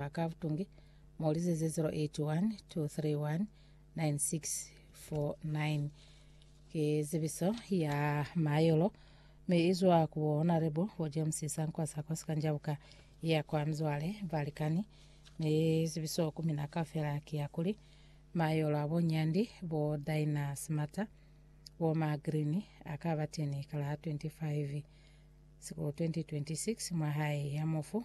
Ba ka butungi, mo lizizi 0812319649. Ki zibiso ya mayolo mi izwa ku bo Honorable bo James Sankwasa kwa Sikanjabuka ya kwa Mzwale Balikani, mi zibiso ku mina kaufela ki ya kuli mayolo a bo Nyandi, bo Daina Smata, bo Ma Green a ka ba teni ka la 25 Sikulu 2026 mwa hae ya mufu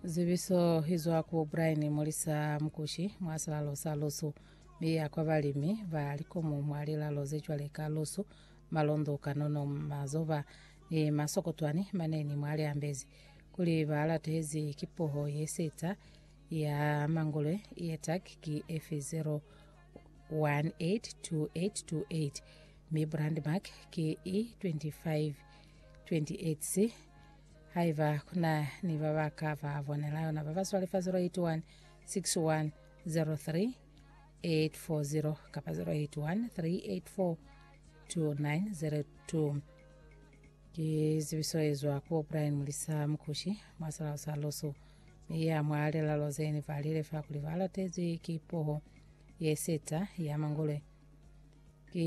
Zibiso izwa ku Brian Molisa Mukushi mwa silalo sa Lusu mi ya kwa balimi ba likomu mwa lilalo ze cwale ka Lusu, Malondo, Kanono, Mazoba ni Masokotwani maneni mwa liambezi kuli ba latezi ki puho ye seta ya mangolwe ye tag ki F0182828 mi brandmark ki E2528C Haiba ku na ni ba ba ka ba bonela yona, ba ba zwale fa 081 6103 840 kapa 081 384 2902 ke zibiso ezwa ko brian mulisa mukushi mwasala sa loso ya mwalela lozeni valile fa kuli valatezwi ke poho yeseta ya mangolwe ke